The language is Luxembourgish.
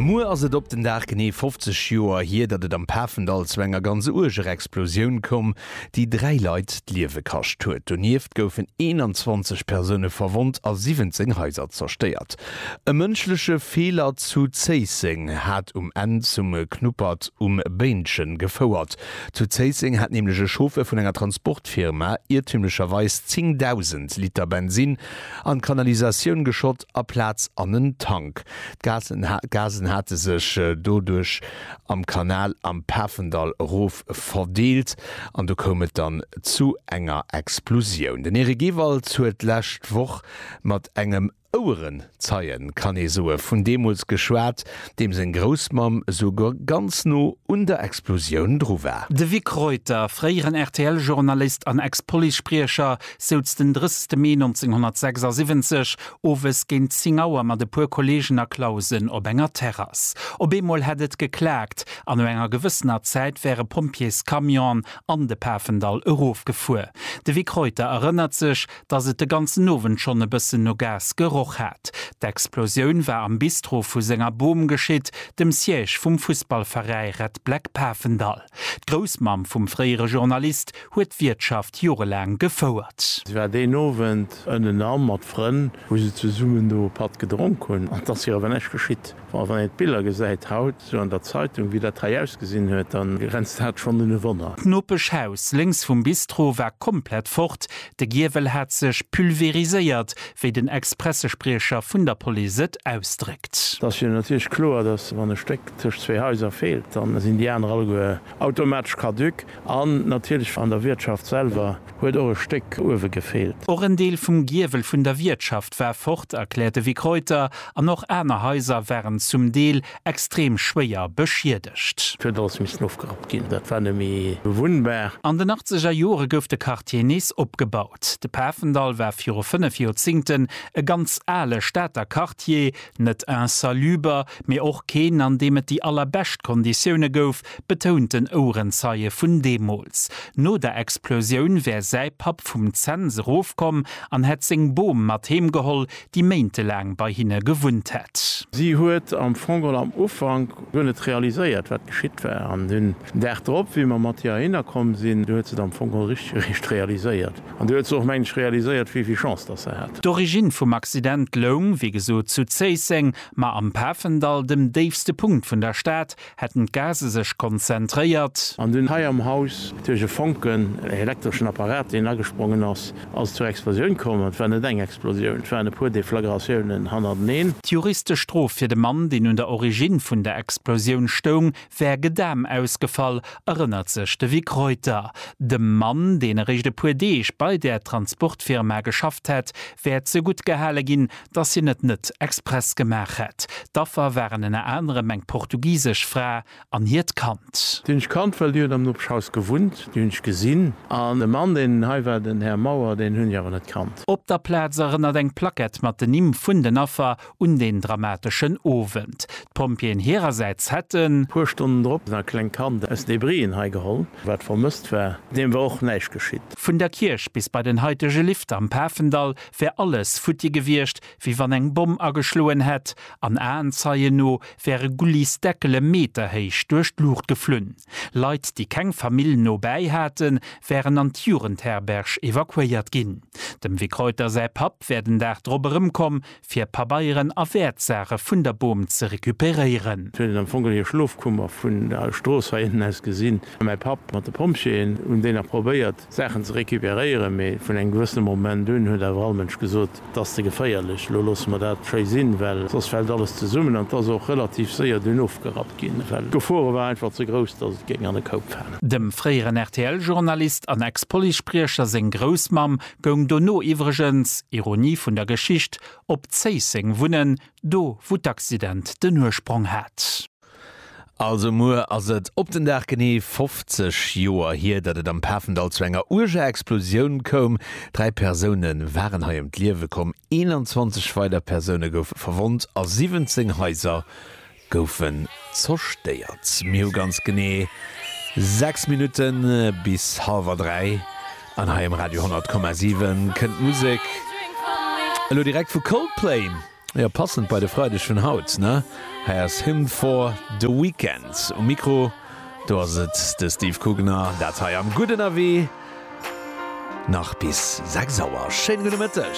Muer ass et op den Dag genee 50 Joer hier, datt et am Pafendall zu enger ganz uerger Explosioun koum, déi dräi Leit d'Liewe kascht huet. Donieft goufen 21 Persoune verwonnt a 17 Haiser zerstéiert. E mënschleche Feeler zu Zéisseng hat um Enn zum Knuppert um Béinchen gefouert. Zu Zéisseng hat nämlech e Chauffeur vun enger Transportfirma iertümlecherweis 10.000 Liter Bensin an d'Kanalisatioun geschott. a Plaz an en Tank. D'Gasen hate sech doduerch am Kanal am Pafendall erof verdeelt an do koum et dann zu enger Explosioun. Den Eric Ewalds huet d'lescht Woch mat engem Ouerenzeie, kann ee soe vun deemools, geschwat, deem seng Groussmamm esouguer ganz no un der Explosioun dru war. De Vic Reuter, fréieren RTL-Journalist an Ex-Police-Spriecher, souz den 30 Mee 1976 owes géint 10 Auer mat e puer Kollegen a Clausen op enger Terrass. Op eemol hätt et geklaakt an no enger gewëssener Zäit wäre Pompjeescamionen an de Pafendall erofgefuer. De Vic Reuter erënnert sech, dass et de ganzen Owend schonn e bëssen no Gas geroch hat. D'Explosioun war am Bistro vu senger Bom geschitt, dem Siège vum Fussballveräi Red Black Pafendall. D'Groussmamm vum fréiere Journalist huet d'Wiertschaft jorelaang gefouert. Si war deen Owend ënnenan mat Frënn, wou se zesummen do e Patt gedronk hunn. An et ass hir awer näischt geschitt. Bon, wann een d'Biller gesäit haut esou an der Zeitung, wéi dat hei ausgesinn huet, da grenzt dat schonn un e Wonner. D'Nopeschhaus lénks vum Bistro war komplett fort, De Giewel hat sech pulveriséiert, wéi den Ex-Pressespriecher vun der Police et ausdréckt. Et ass jo natierlech kloer, datt wann e Stéck tëscht zwee Haiser feelt, da sinn déi aner alleguer automatesch caduc. An natierlech an der Wiertschaft selwer huet och e Stéck uewe gefeelt. Och en Deel vum Giewel vun der Wiertschaft war fort, erkläert de Vic Reuter. An och aner Haiser waren zum Deel extrem schwéier beschiedegt. Et huet alles missen ofgerappt ginn, dat war net méi bewunnbar. An den achtzeger Jore gouf de Quartier nees opgebaut. De Pafendall war viru fënnef Joerzingten e ganz ale Stater Quartier, net insaluber, mee och keen, an deem et déi allerbescht Konditioune gouf, betount en Ouerenzeie vun deemools. No der Explosioun wär säi Papp vum Zens erofkomm an hätt seng Bom mat heem geholl, déi méintelaang bei hinne gewunnt hätt. Si huet am Fong geholl am Ufank guer net realiséiert, wat geschitt war. An den Dag drop, wéi mer mat hir heihinner komm sinn, du huet se et am Fong geholl richteg eréischt realiséiert. An du huet se och, mengen ech, realiséiert, wéi vill Chance datt se hat. D'Origine vum Accident loung, wéi gesot, zu Zéisseng, ma am Pafendall, dem déifste Punkt vun der Stad, Hätten d'Gase sech konzentréiert. An dunn hei am Haus duerch e Fonken, ee elektreschen Apparat, deen agesprongen ass, ass et zur Explosioun komm. Et war net eng Explosioun, et waren e puer Deflagratiounen hannerteneen. D'juristesch Strof fir de Mann, deen un der Origine vun der Explosioun stoung, wär Gedam ausgefall, erënnert sech de Vic Reuter. Dem Mann, deen eréischt e puer Deeg bei där Transportfirma geschafft hätt, wär ze gutt gehale ginn, dass hien et net express gemaach hätt. D'Affer waren ënner anerem eng portugisesch Fra an hiert Kand. Déi hunn ech kannt, well déi huet am Nopeschhaus gewunnt. Déi hunn ech gesinn. An de Mann, deen hei war, den Här Mauer, deen hunn ech awer net kannt. Op der Plaz erënnert eng Plackett mat den Nimm vun den Affer un deen dramateschen Owend. D'Pompjeeën hirersäits hätten. Puer Stonnen drop e klengt Kand aus Debrien hei geholl, wat vermësst war. Deem war och näischt geschitt. Vun der Kierch bis bei den haitege Lift am Pafendall wär alles futti gewiescht, wéi wann eng Bomm ageschloen hätt, an Aenzeien no wäre Gullis Deckele meterhéich duerch d'Luucht geflunn. Leit, déi keng Famill no bäi haten, wären an d'Jugendherberg evakuéiert ginn. Dem Vic Reuter säi Papp wär den Dag drop erëmkomm, fir Pabeieren a Wäertsaache vun der Bom ze recuperéieren. Sou hätt et am Fong an hir Schlofkummer vun der Strooss heiënten aus gesinn. Mäi Papp mat de Pompjeeën hunn déi nach probéiert, Saachen ze recuperéieren, mee vun engem gewëssene Moment un huet awer all Mënsch gesot, Et ass ze geféierlech, elo loosse mer dat schéi sinn, well soss fält alles zesummen. An et ass och relativ séier dunn ofgerappt ginn, well d'Gefore war einfach ze grouss, dass et géing an e Koup falen. Dem fréieren RTL-Journalist an Ex-Policespriecher seng Groussmamm goung dono iwwregens, Ironie vun der Geschicht, op Zéisseng wunnen, do wou d'Accident den Ursprong hat. Also muer ass et op den Dag genee 50 Joer hier, datt et am Pafendall zu enger uerger Explosioun koum. Dräi Persoune waren hei ëm d'Liewe komm, 21 weider Persoune goufe verwonnt a 17 Haiser goufen zerstéiert. Mir hu ganz genee 6 Minutte bis hallwer dräi an hei um Radio 100,7 kënnt d'Musek elo direkt vu Coldplay. Jo, passend bei de Freideg vun haut, ne? Hei ass Hymn for the Weekend um Mikro. Do ass et de Steve Kugner, dat hei am Gudden Avis. Nach bis 6 Auer. Schéine gudde Mëtteg.